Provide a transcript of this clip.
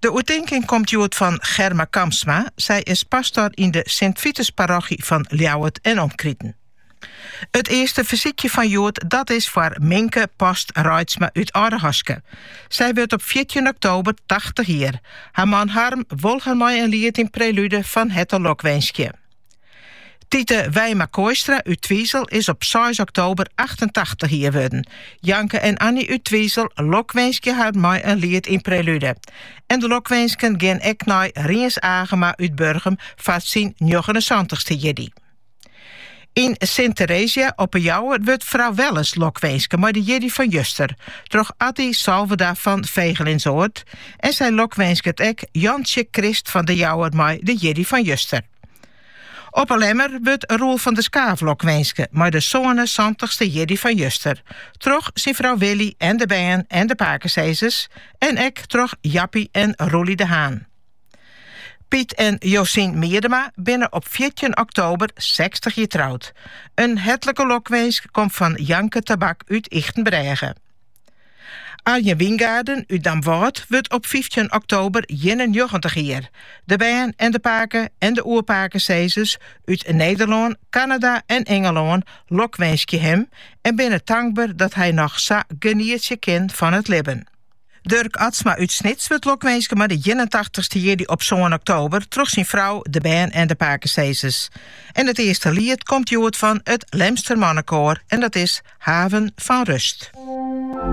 De oertinking komt hjoed fan Germa Kamsma. Sy is pastor yn de Sint-Vitus-parochy fan Ljouwert en omkriten. It earste fersykje fan hjoed dat is foar Minke Post Reitsma út Aldehaske. Sy wurdt op fjirtjin oktober tachtich jier. Har man Harm wol har mei in liet yn Prelude fan herte lokwinskje. Tite Wijma Kooistra út Twizel is op seis oktober achtentachtich jier wurden. Janke en Annie út Twizel lokwinskje har mei in liet yn Prelude. En de lokwinsken gean ek nei Riens Agema út Burgum foar syn njoggenensantich-ste jierdei. Yn Sint Theresia op 'e Jouwer wurdt frou Welles lokwinske mei de jierdei fan juster troch Atty Salveda fan Vegelinsoard, En sy lokwinsket ek Jantsje Krist fan de Jouwer mei de jierdei fan juster. Op 'e Lemmer wurdt Roel van der Skaaf lokwinske mei de sânensantich-ste jierdei fan juster, troch syn frou Willy en de bern en de pakesizzers en ek troch Jappy en Roelie de Haan. Piet en Josien Miedema binne op fjirtjin oktober sechstich jier troud. In hertlike lokwinsk komt fan Janke Tabak út Ychtenbrêge. Arjen Wyngaarden út Damwâld wurdt op fyftjin oktober ienennjoggentich jier. De bern en de pake en de oerpakesizzers út Nederlân, Kanada en Ingelân lokwinskje him en binne tankber dat hy noch sa genietsje kin fan it libben. Durk Atsma út Snits wurdt lokwinske mei de ienentachtich-ste jierdei op sân oktober troch syn frou, de bern en de pakesizzers. En it earste liet komt hjoed fan it Lemster Mannekoar en dat is Haven van Rust.